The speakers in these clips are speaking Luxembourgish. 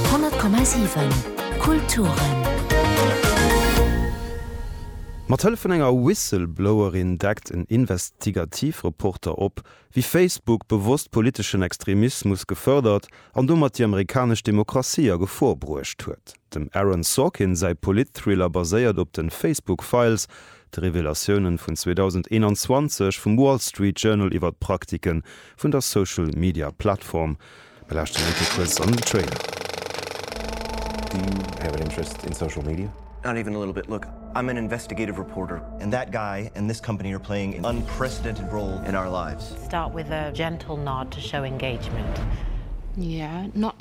10,7 Kulturen. Mat Hëllef vun enger Whistleblowerin deckt en Investigativreporter op, wéi Facebook bewosst politeschen Extremismus gefërdert an domat déi amerikanesch Demokratie a Gefor bruecht huet. Dem Aaron Sorkin säi Politthriller baséiert op de Facebook Files, de Revelatiounen vun 2021 vum Wall Street Journal iwwer d'Praktike vun der Social Media Plattform. Mir lauschteren eng Kéier kuerz an den Trailer. Do you have an interest in social media? Not even a little bit. Look, I'm an investigative reporter. And that guy and this company are playing an unprecedented role in our lives. Start with a gentle nod to show engagement. Yeah, not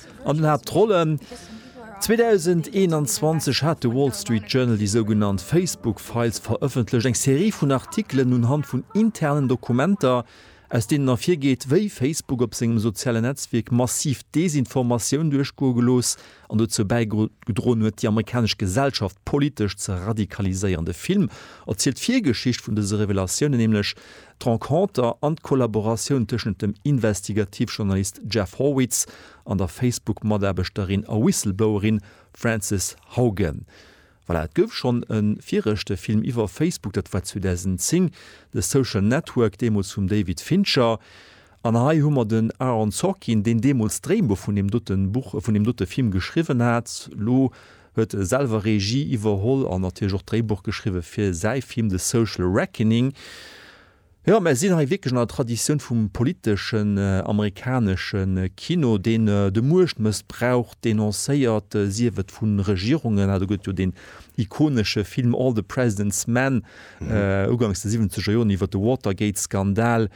An den Haaptrollen. 2021 hat de Wall Street Journal déi sougenannt Facebook Files verëffentlecht, eng Serie vun Artikelen unhand vun internen Dokumenter, aus deenen ervirgeet, wéi Facebook op sengem sozialen Netzwierk massiv Desinformatioun duerchgoe gelooss an dozou bäigedroen huet, déi amerikanesch Gesellschaft politesch ze radikaliséieren. De Film erzielt d'Virgeschicht vun dëse Revelatiounen, nämlech D'Renconter an d'Kollaboratioun tëschent dem Investigativjournalist Jeff Horwitz an der Facebook-Mataarbechterin a Whistleblowerin Frances Haugen. Voilà, et gouf schonn e viregte Film iwwer Facebook, dat war 2010, The Social Network, deemools vum David Fincher. An hei hu mer den Aaron Sorkin, deen deemools d'Dréibuch vun deem dote Buch, vun deem dote Film geschriwwen hat. Elo huet selwer Regie iwwerholl an natierlech och d'Dréibuch geschriwwe fir säi Film The Social Reckoning. Jo, mär sinn hei wierklech an der Traditioun vum politeschen amerikanesche Kino, deen de Muechtmëssbrauch denoncéiert, sief et vu Regierungen, ah do gëtt jo deen ikonesche Film All the President's Men ugangs de siwwenzeger Joren iwwer de Watergate-Skandal,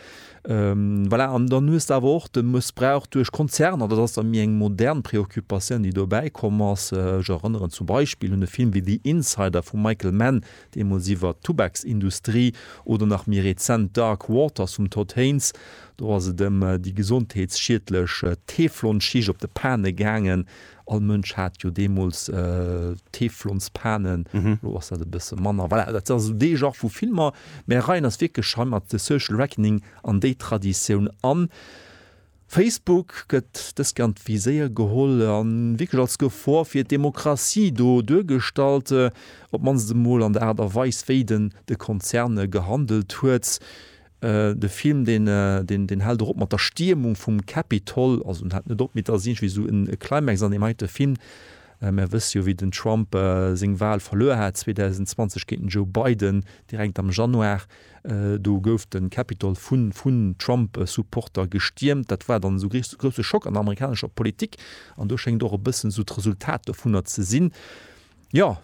Voilà, an dann hues de awer och de Mëssbrauch duerch Konzerner, dat ass da méi eng modern Preoccupatioun, déi do bäikomm ass. Ech erënneren zum Beispill un e Film wéi The Insider vum Michael Mann, deemools iwwert d'Tubaksindustrie, oder nach méi rezent Dark Waters vum Todd Haynes. Do ass et ëm déi gesondheetsschiedlech Teflonschicht op de Pane gaangen, All Mënsch hat jo deemools Teflonspanen, elo ass dat e bësse manner. Voilà, dat ass esou dee Genre vu Filmer. Mä reien eis wierklech hei mat The Social Reckoning an déi Traditioun an. Facebook gëtt dëskant wéi séier geholl a wierklech als Gefor fir d'Demokratie do duergestallt, op d'mannst emol an der Aart a Weis, wéi den de Konzern gehandelt huet. De Film deen hält och op mat der Stiermung vum Capitol, also en hält net op, mee et ass iergendwéi esou e Climax an deem heite Film. Mär wësse jo wéi den Trump seng Wal verluer hat 2020 géint den Joe Biden, direkt am Januar. Do gouf de Capitol vun Trump-Supporter gestiermt. Dat war dann esou e grousse Schock an der amerikanescher Politik an do schéngt och e bëssen esou d'Resultat dovunner ze sinn. Jo,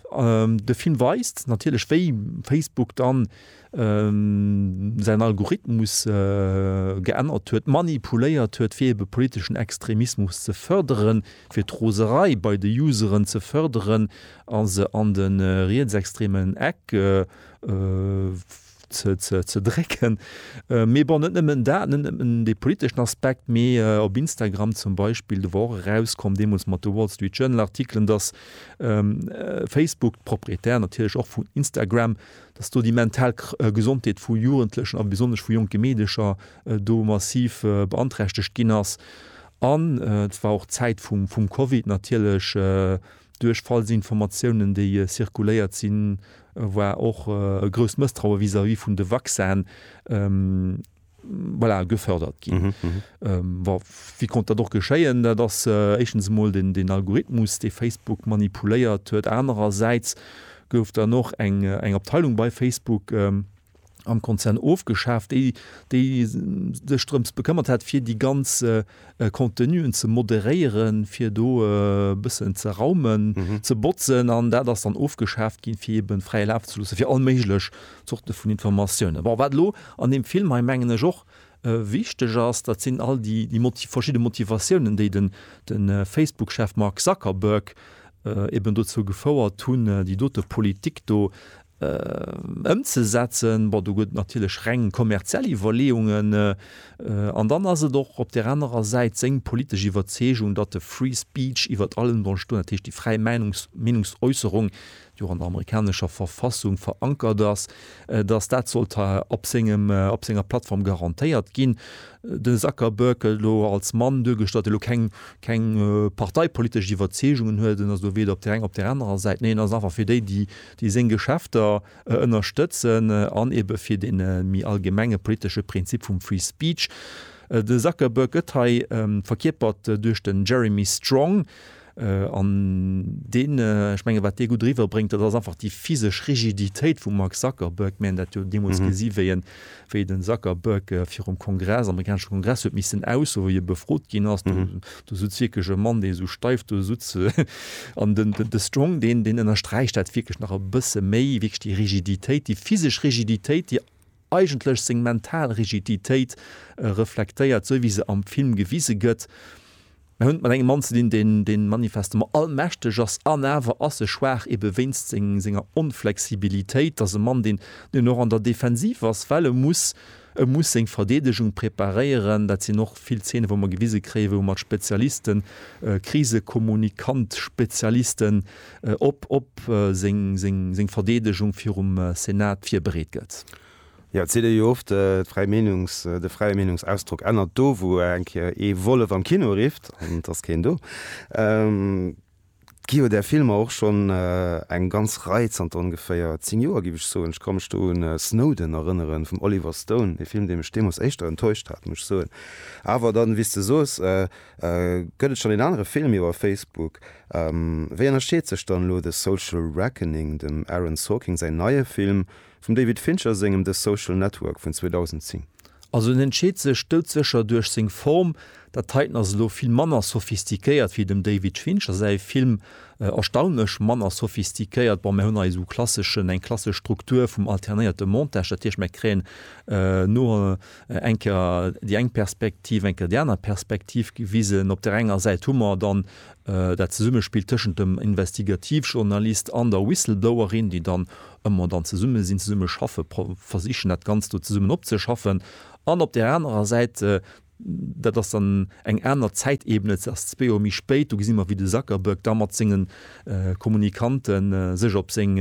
de Film weist natierlech wéi Facebook dann säin Algorithmus geännert huet, manipuléiert huet fir ebe politeschen Extremismus ze fërderen, fir d'Roserei bei de Useren ze fërderen a se an de rietsextremen Eck ze drécken. Mee bon, net nëmmen dat, net nëmmen dee politeschen Aspekt, mee op Instagram zum Beispill, do war och erauskomm, deemools mat de Wall Street Journal Artikelen, datt Facebook, d'Propriétaire natierlech och vun Instagram, datt do déi mental Gesondheet vu Jugendlechen a besonnesch vu jonke Meedecher do massiv beanträchtegt ginn ass. An et war och d'Zäit vum Covid natierlech, duerch falsch Informatiounen, déi zirkuléiert sinn, Et war och e grousst Mësstraue vis-à-vis vun de Vaccin, voilà, gefördert ginn. Wa, wéi konnt dat och geschéien? Dat ass éischtens emol den Algorithmus, dee Facebook manipuléiert huet. Anerersäits gouf dann och eng Abteilung bei Facebook, am Konzern ofgeschaaft, déi déi sech drëms bekëmmert hat fir déi ganz Contenuen ze moderéieren, fir do e bëssen ze raumen, ze botzen an dat ass dann ofgeschaaft ginn, fir eben fräie Laf ze loosse fir all méiglech Zorte vun Informatiounen. Bon, wat elo an deem Film hei, mengen ech, och wichteg ass, dat sinn all déi déi verschidde Motivatiounen, déi de Facebook-Chef Mark Zuckerberg eben dozou gefouert hunn, déi dote Politik do ëmzesetzen, bon do gëtt et natierlech reng kommerziell Iwwerleeungen an dann ass et och op där anerer Säit seng politesch Iwwerzeegung, datt de Free Speech iwwert allem soll stoen, dat heescht déi fräi Meenungsäusserung, déi och an der amerikanescher Verfassung verankert ass, datt dat sollt op sengem, op senger Plattform garantéiert ginn. De Zuckerberg gëtt elo als Mann duergestallt, dee elo keng, keng parteipolitesch Iwwerzeegungen huet, en ass elo weder op där enger op där anerer Säit, nee en ass einfach fir déi, déi, déi seng Geschäfter ënnerstëtzen an ebe fir dee méi allgemenge politesche Prinzip vum Free Speech. De Zuckerberg gëtt hei verkierpert duerch den Jeremy Strong an deen, ech menge wat dee gutt eriwwerbréngt, dat ass einfach déi physesch Rigiditéit vum Mark Zuckerberg. Mir haten dat jo deemools gesi wéi en wéi den Zuckerberg virum Kongress, amerikanesche Kongress huet missen aussoen, wéi e befrot ginn ass, do sutz wierklech e Mann, dee sou steif do sutz an den de Strong, deen deen ënnersträicht dat wierklech nach e bësse méi, wierklech déi Rigiditéit, déi physesch Rigiditéit, déi eigentlech seng mental Rigiditéit reflektéiert, sou wéi se am Film gewise gëtt. Mer hunn et mat engem Mann ze dinn, deen, deen manifestement allmächteg ass, an awer ass e schwaach, ebe wéinst seng, senger Onflexibilitéit. Et ass e Mann, deen, deen och an der Defensiv ass, well e muss, e muss seng Verdeedegung preparéieren. Dat sinn och vill Zeene wou mer gewise kréien, wou mat Spezialisten, Krisekommunikant-Spezialisten op, op seng, seng, seng Verdeedegung virum Senat virbereet gëtt. Jo, et seet ee jo oft, d'fräi Meenungs-, de fräie Meenungsausdrock ännert do, wou eng Kéier ee Wollef am Kino rifft, an et ass keen do. Et gi jo där Filmer och schonn eng ganz Rei zanter ongeféier zéng Joer, géif ech soen. Ech ka mech do un Snowden erënneren, vum Oliver Stone, e Film, dee mech deemools éischter enttäuscht hat, muss ech soen. Awer dann, wéi s de soos, gëtt et schonn een anere Film iwwer Facebook. Wéi ënnerscheet sech dann elo The Social Reckoning, dem Aaron Sorkin säin neie Film, Vum David Fincher sengem The Social Network vun 2010. Also en entscheet sech doudsécher duerch seng Form. Dat heiten ass elo vill manner sophistiquéiert wéi dem David Fincher säi Film, erstaunlech manner sophistiquéiert. Bon, mär hunn hei esou klasseschen, eng klassesch Struktur vum alternéierte Montage, dat heescht, mär kréien no eng Kéier déi eng Perspektiv, eng Kéier déi aner Perspektiv gewisen. Op där enger Säit hu mer dann Dat Zesummespill tëschent dem Investigativjournalist an der Whistleblowerin, déi dann ëmmer dann zesumme sinn, zesumme schaffe versichen, dat Ganzt do zesummen opzeschaffen. An op där anerer Säit, dat ass dann eng aner Zäitebene, dat ass zwee Joer méi spéit, do gesi mer, wéi de Zuckerberg da mat senge Kommunikanten sech op seng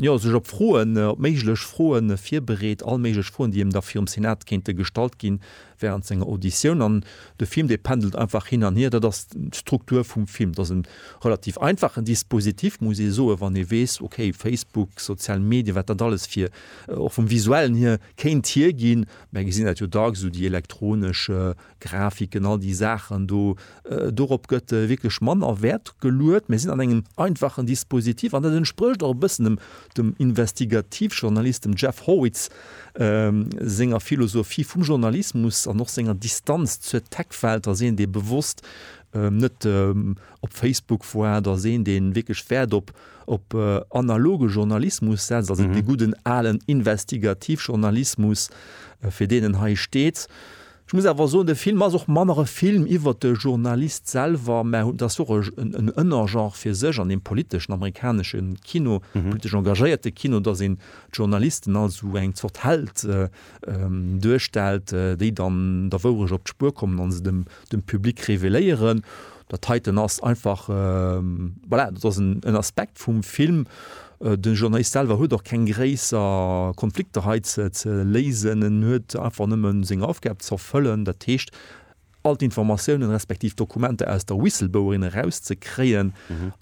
jo, sech op Froen, op méiglech Froe virbereet, all méiglech Froen, déi him da virum Senat kéinte gestallt ginn, wärend senger Auditioun. An de Film, dee pendelt einfach hin an hier. Dat ass d'Struktur vum Film. Dat ass e relativ einfachen Dispositif, muss ee soen, wann ee weess, okay, Facebook, sozial Medien, wat dat alles fir, och vum Visuellen hier, kéint hierginn. Mer gesinn dat jo dacks, esou déi elektronesch Grafiken, all déi Saachen do, dorop gëtt wierklech manner Wäert geluet. Mir sinn an engem einfachen Dispositif an dat entsprécht och e bëssen dem Investigativjournalist, dem Jeff Horwitz, senger Philosophie vum Journalismus an och senger Distanz zur Tech-Welt. Ass een, dee bewosst net op Facebook woart, ass een, dee wierklech Wäert op analoge Journalismus setzt, also dee gudden alen Investigativjournalismus, fir deen en hei steet. Ech muss awer soen, de Film ass och manner e Film iwwert de Journalist selwer, mä dat ass och en Ënnergenre fir sech an deem politeschen amerikanesche Kino, politesch engagéierte Kino, datt een d'Journalisten als esou eng Zort Held duerstellt, déi dann der Wourecht op d'Spuer kommen a se dem Public reveléieren. Dat heiten ass einfach, voilà, dat ass en Aspekt vum Film, Den Journalist selwer huet och keng gréisser Konflikter hei ze léisen. En huet einfach nëmmen seng Aufgab ze erfëllen, dat heescht all d'Informatiounen respektiv Dokumenter aus der Whistleblowerin eraus ze kréien.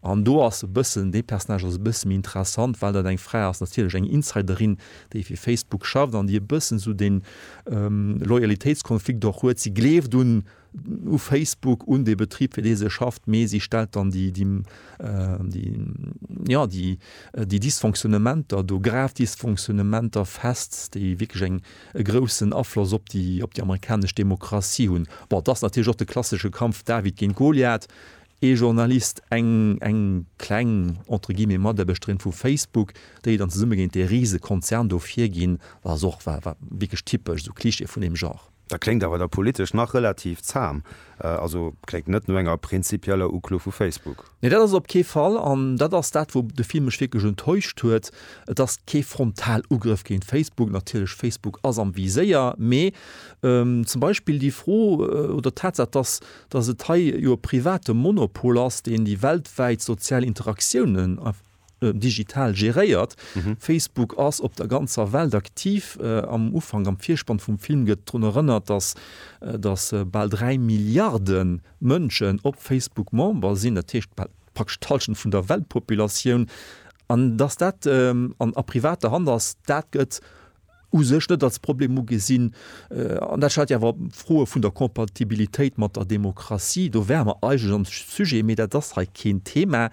An do ass e bëssen, dee Personnage ass e bësse méi interessant, well dat eng Fra ass, natierlech eng Insiderin, déi fir Facebook schafft an déi e bëssen esou dee Loyalitéitskonflikt och huet, si gleeft un u Facebook un dee Betrib fir dee se schafft, mee si stellt dann déi jo déi Dysfonctionnementer do, grav Dysfonctionnementer fest, déi wierklech eng e groussen Afloss op déi op déi amerikanesch Demokratie hunn. Bon, et ass natierlech och de klassesche Kampf David géint Goliath, ee Journalist, eng eng kleng entre guillemets Mataarbechterin vu Facebook, déi dann zesumme géint dee Risekonzern do virginn, ass och wa wa wierklech typesch, esou Klischee vun deem Genre. Dat kléngt awer da politesch nach relativ zam. Also kléngt net no enger prinzipieller Uklo vu Facebook. Nee, dat ass et op kee Fall. An dat ass dat, wou de Film mech wierklech enttäuscht huet. Et ass kee Frontalugrëff géint Facebook. Natierlech, Facebook ass am Viséier. Mee zum Beispill déi Fro oder d'Tatsaach, dass, dass et hei jo e private Monopol ass, deen déi weltwäit sozial Interaktiounen einfach, digital geréiert. Facebook ass op der ganzer Welt aktiv. Am Ufank, am Virspann vum Film gëtt drun erënnert, datt datt bal 3 Milliarde Mënschen op Facebook Member sinn, dat heescht bal praktesch d'Hallschent vun der Weltpopulatioun. An datt dat an a privater Hand ass, dat gëtt u sech net als Problem ugesinn. An dat stellt jo awer Froe vun der Compatibilitéit mat der Demokratie. Do wäre mer eigentlech am Sujet, mee dat ass hei keen Thema.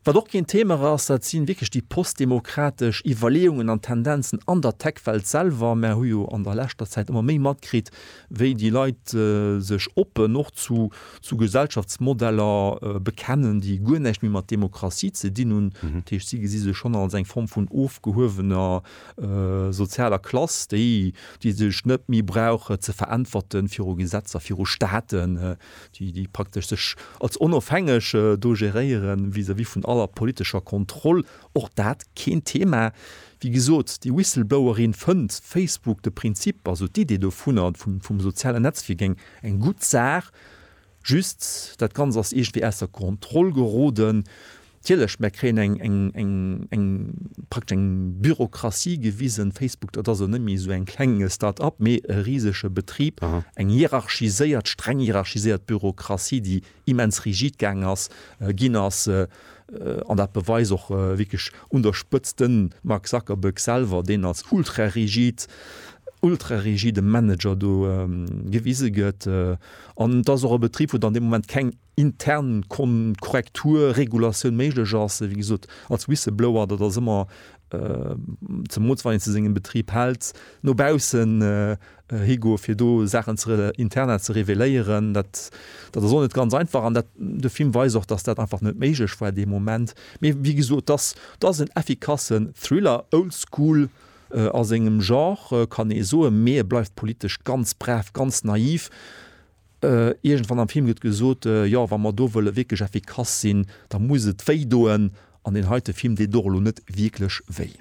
Wat och keen Themer ass, dat si wierklech déi postdemokratesch Iwwerleeungen an Tendenzen an der Tech-Welt selwer. Mer hu jo an der leschter Zäit ëmmer méi matkritt, wéi déi Leit sech oppen och zu Gesellschaftsmodeller bekennen, déi guer näischt méi mat Demokratie ze dinn hunn. Dat heescht, si gesi sech schonn als eng Form vun ofgehuewener sozialer Klass, déi sech net méi brauch ze veräntwerten viru Gesetzer, viru Staaten. déi praktesch sech als onofhängeg do geréiere vis-à-vis vun aller politescher Kontroll, och dat keen Thema. Wéi gesot, déi Whistleblowerin fënnt Facebook, de Prinzip, also d'Idee dovunner, vum sozialen Netzwierk, eng gutt Saach, just dat Ganzt ass iergendwéi aus der Kontroll geroden. Natierlech, mär kréien eng, eng, eng, eng, praktesch eng Bürokratie gewisen. Facebook, dat ass elo net méi esou eng kleng Start-up, mee e risege Betrib, eng hierarchiséiert, streng hierarchiséiert Bürokratie, déi immens rigid gaang ass, ginn ass, an dat beweist och wierklech un der Spëtzt de Mark Zuckerberg selwer, deen als ultra-rigid, ultra-rigide Manager do gewise gëtt. An et ass och e Betrib, wou dann dee Moment keng. intern Korrektur, Regulatioun méiglech ass. Wéi gesot, als Whistleblower, dat ass ëmmer, zemools wann een zu sengem Betrib hält, no baussen higoe fir do Saachen ze, interna ze reveléieren, dat, dat ass och net ganz einfach. An dat, de Film weist och, datt dat einfach net méiglech war dee Moment. Mee wéi gesot, dass, dat ass en effikassen Thriller, old school a sengem Genre, kann ee soen, mee e bleift politesch ganz brav, ganz naiv. Iergendwann am Film gëtt gesot, jo, wa mer do wëlle wierklech effikass sinn, da muss et wéi doen. An deen heite Film deet och elo net wierklech wéi.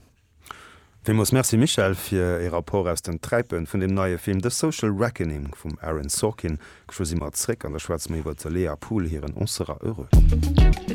Villmools Merci Michèle fir e Rapport aus den Träipen vun deem neie Film The Social Reckoning vum Aaron Sorkin. Geschwë si mer zréck an da schwätze mer iwwer d'Lea Pool hiren On sera heureux.